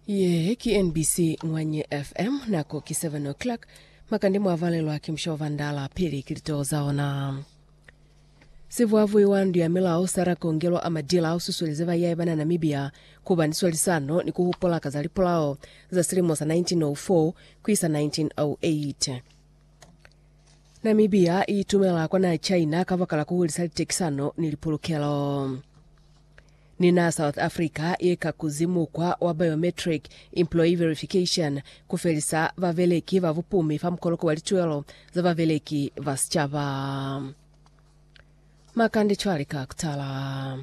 Ye ki NBC Ngwanye FM, nako ki 7 o'clock. Makande mwa valelwa ki musha wa Vandala pili ki litoo za ona. Sivuavui wa ndu ya milao Sarah Kongelo Amadila ususuelize bayahi bana Namibia kuba ni swalisano ni kuhupula ka za lipulao za silimo sa 1904 kuisa 1908. Namibia iitumela kwa naha China kabakala kuhulisa litekisano ni lipulukelo. Ni na South Africa ye ka kuzi mukwa wa biometric employee verification ku felisa babeleki ba bupumi fa mukoloko wa lituelo za babeleki ba sicaba. Makande cwale ka kutala.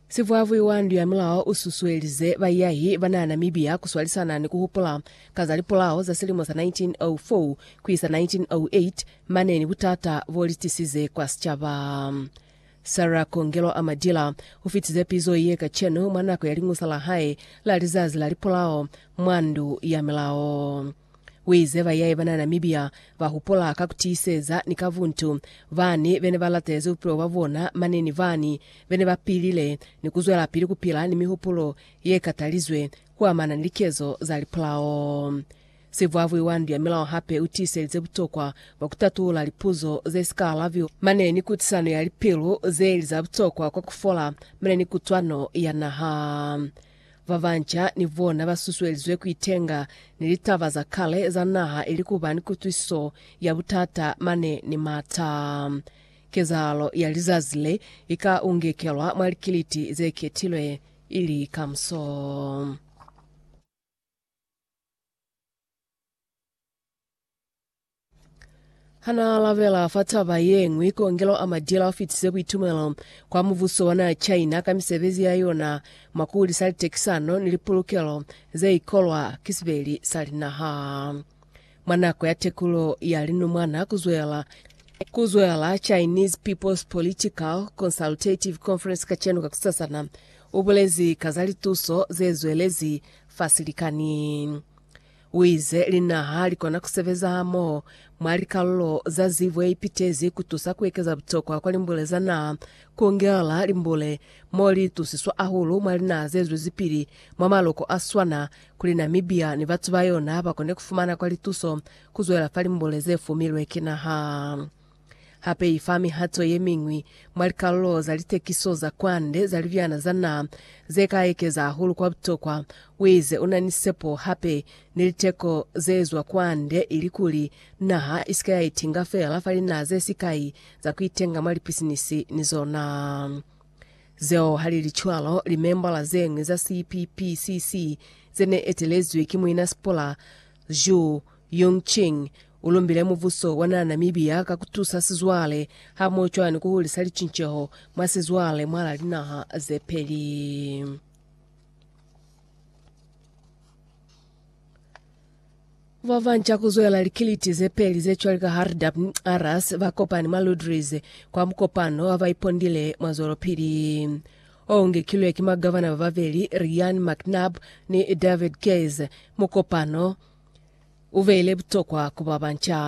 Sivwavwi wa ndu ya milao u susuelize baiyahi ba naha Namibia ku swalisana ni ku hupula ka za lipulao za silimo sa 1904 ku isa 1908 mane ni butata bo li tisize kwa sicaba. Sarah Kongelo Amadila ufitize pizo ye kacenu mwa nako ya liñusa la hae la lizazi la lipolao mwa Ndu ya Milao. Uize bayaye bana Namibia bahupula ka kutiiseza ni ka buntu bani bene balatezi bupilo bwa bona mane ni bani bene bapilile ni kuzwelapili kupila ni mihupulo ye katalizwe kuamana ni likezo za lipolao. Sivwavwi wa ndu ya milao hape u tiiselize butokwa bwa ku tatulula lipuzo ze si ka alabiwa mane ni kutisano ya lipilu ze li za butokwa kwa ku fola mane ni kutwano ya naha. Ba banca ni bona ba susuelizwe ku itenga ni litaba za kale za naha ili ku ba ni kutwisiso ya butata mane ni m'ata. Kezahalo ya lizazi le i ka ungekelwa mwa likiliti ze ketilwe ili kamuso. Hanaalabela fa taba yeñwi, Kongelo a Madila ufitise buitumelo kwa mubuso wa naha China ka misebezi ya yona mwa kuhulisa litekisano ni lipulukelo zeikolwa ki sibeli sa linaha. Mwa nako ya tekulo ya linumwana kuzwela kuzwela Chinese People's Political Consultative Conference kacenu kakusasana, ubulezi ka za lituso zezwelezi fa silikani. U ize, Linaha li kona ku sebeza hamoho mwa likalulo za zibo ye ipitezi ku tusa ku ekeza butokwa kwa limbule za naha, ku ngela limbule mo li itusiswa hahulu mwa linaha ze zwezipili mwa maloko a swana kuli Namibia ni batu ba yona ba kone ku fumana kwa lituso ku zwela fa limbule ze fumilwe ki naha. Hape i fa mihato ye miñwi mwa likalulo za litekiso za kwande za libyana za naha ze ka ekeza hahulu kwa butokwa. U ize u na ni sepo hape ni liteko ze zwa kwande ilikuli naha i si ka ya itinga feela fa linaha ze sikai za ku itenga mwa lipisinisi ni zona. Zeo ha li li cwalo, limembala ze ñwi za CPPCC ze ne etelezwi ki Muina Sipula Zhu Yongqing U lumbile mubuso wa naa Namibia ka ku tusa sizwale hamoho cwana ni ku hulisa licinceho mwa sizwale mwahalaa linaha ze peli. Ba banca ku zwela likiliti ze peli ze cwale ka Hardapnarus ba kopani mwa Ludres kwa mukopano wa ba ipondile mwa zwelopili o ngekilwe ki magavana ba babeli Ryan McNab ni David Keyes. Mukopano U beile butokwa ku ba banca.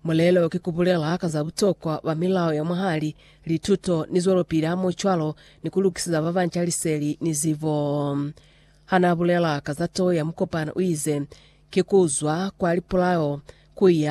Mulelo ki ku bulela ka za butokwa ba milao ya mwahali, lituto, ni zwelopili hamohocwalo ni ku lukiseza ba banca liseli ni zibo. Ha n'a bulela ka za toho ya mukopano u ize, Ki ku zwa kwa lipulao ku ya